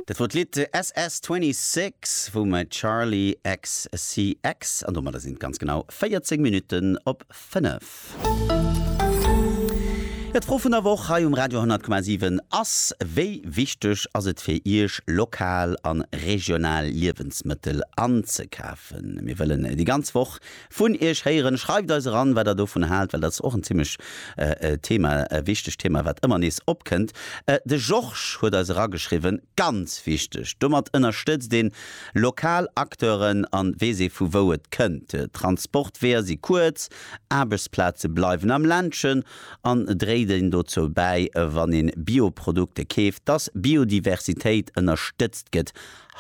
Dat wor d'Lidd SS-26 vum Charli XCX an domadder sinn et ganz genau 14 Minutten op 5. Ja, d'Fro vun der Woch hei um Radio 10,7 ass, Wéi wichteg ass et fir Iech, lokal an regional Liewensmëttel anzekafen? Mir wëllen déi ganz Woch Vun iech héieren. Schreift eis eran wat der dovun haalt, well dat ass och en zimlech Thema, e wichtegt Thema wat ëmmer nees opkënnt. De Georges huet eis erageschriwwen, ganz wichteg, domat ënnerstëtzt een lokal Acteuren an weess ee vu wou et kënnt. Transportweeër si kuerz, Aarbechtsplaze bleiwen am Ländchen an dréit een dozou bäi, wann een Bioprodukte keeft, dass Biodiversitéit ënnerstëtzt gëtt.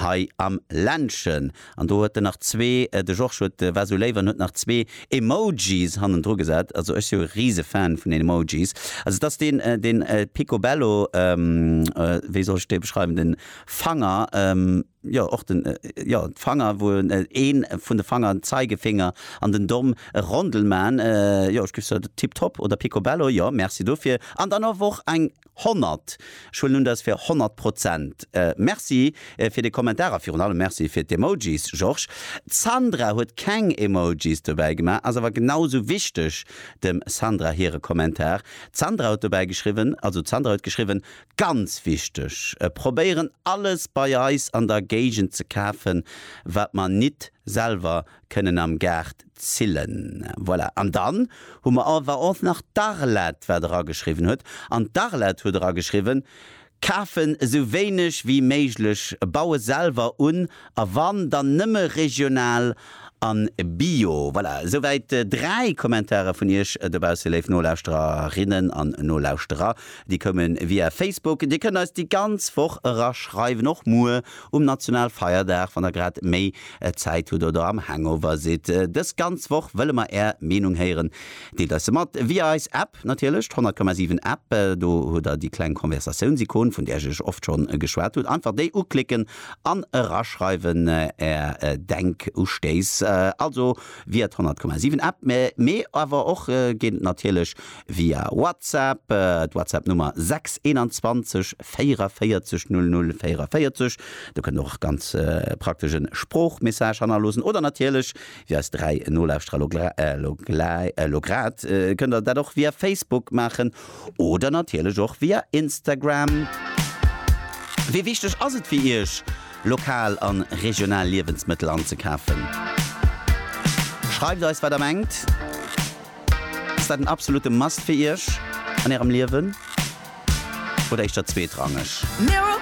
hei am Ländchen. An do huet en nach zwee, de Georges huet, war esou léif an huet nach zwee Emojis hannendru gesat. Also ech si jo e rise Fan vun den Emojis. Also et ass deen, deen Picobello, wéi soll ech dee beschreiwen, den Fanger, jo och den, jo d'Fanger, wou een vun de Fanger, den Zeigefinger an den Domm e Rondel man. Jo ech giff soe tiptop oder Picobello, jo merci dofir. An dann awer och eng 100! Ech huelen un dat ass fir 100 Prozent. Merci fir de Kommentar a virun allem Merci fir d'Emojis, Georges. D'Sandra huet keng Emojis dobäi gemaach, ass awer genau sou wichteg dem Sandra hire Kommentar. D'Sandra huet dobäi geschriwwen, also d'Sandra huet geschriwwen, Ganz wichteg! Probéieren alles bei eis an der Géigend ze kafen, wat mer nit selwer Kënnen am Gaart zillen. Voilà. An dann hu mer all war och nach d'Arlette, wat erageschriwwen huet. An d'Arlette huet erageschriwwen, Kafen esou wéineg wéi méiglech, baue selwer un a wann, dann nëmme regional a bio. Voilà, esou wäit dräi Kommentare vun Iech dobausse, léif Nolauschtererinnen an Nolauschterer. Déi koume via Facebook. Dir kënnt eis déi ganz Woch eraschreiwen, och muer Um Nationalfeierdag, wann der grad méi Zäit hutt oder am Hangover sidd. Dës ganz Woch wëlle mer är Meenung héieren. Deelt eis se mat via eis App natierlech, d'Honnertkomma-siwen App. Do hutt der déi kleng Konversatiounsikon, vun där ech iech oft schonn geschwat hunn. Einfach déi uklicken an eraschreiwen är Denkustéiss. Also via d'Honnertkomma-siwen App, mee awer och geet et natierlech via WhatsApp, d'WhatsApp Nummer 6 21 44 00 44, do kënnt och ganz praktesch en Sproochmessage hannerloosen, oder natierlech, wéi eis 3 Nolauschterer lo lo grad, kënnt der dat och via Facebook maachen, oder natierlech och via Instagram. Wéi wichteg ass et fir Iech, lokal an regional Liewensmëttel anzekafen? Schreift eis wat der mengt. Ass dat en absolute Must fir Iech an Ärem Liewen oder éischter zweetrangeg?